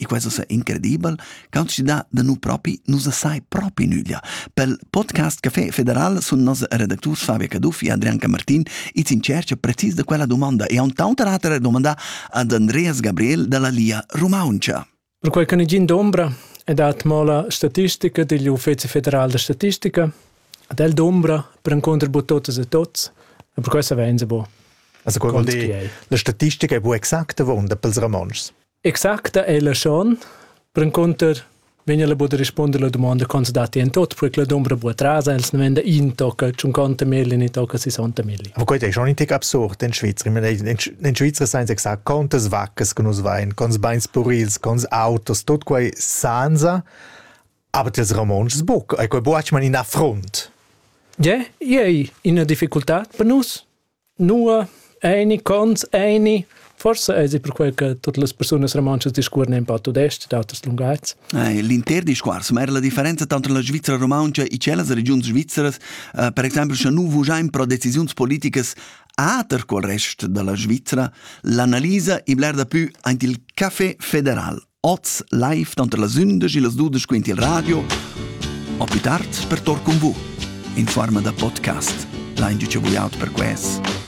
E quai ussa incredibel cuntschiedà da nu propi nu sa sai propi nüglia. Pel podcast Café Federal sun nos redacturs Fabio Caduffi e Adrian Camartin its in tschercha precis da quella dumanda e haun taunt rater domandà ad Andreas Gabriel da la Lia Rumauntscha. Perquai can igiin d'ombra e dat mola statistica digl Uffezi federal da statistica Ad el d'umbra perencunter bu totas e tots e per quei savein se bu. Also quel vuol dir, la statistica è bu exacta vonda pels Ramonschs. Exacta è la schon, perencunter vegn el bu da risponder la domanda con se dati en tot, perché la d'umbra bu atrasa, els ne venda in tocca, cinquanta milli, ni tocca sessanta milli. Aber quei è schon ein tick absurd in Schweizer. In Schweizer seien exakt contas vaccas che nus vein, cons beins purils, cons autos, tot quei sansa Aber das Ramontsch buc, ei quei buc man in affront. Je, ei ina difficultad per nus. Nua Eini cons, eini. Forse è per quel che tutte le persone romanche discorrono un po' tudeste, d'autres linguaggi. Eh, L'inter discorso, ma era la differenza tra la Svizzera romanca e quelle regioni svizzere, eh, per esempio, se noi vogliamo pro decisioni politiche ater col resto della Svizzera, l'analisa ibler da più ante il café federal. Oz live tanter las 11 e las 12 quint il radio, o più tard per tor con vu, in forma da podcast, l'hain già vuiaut per ques.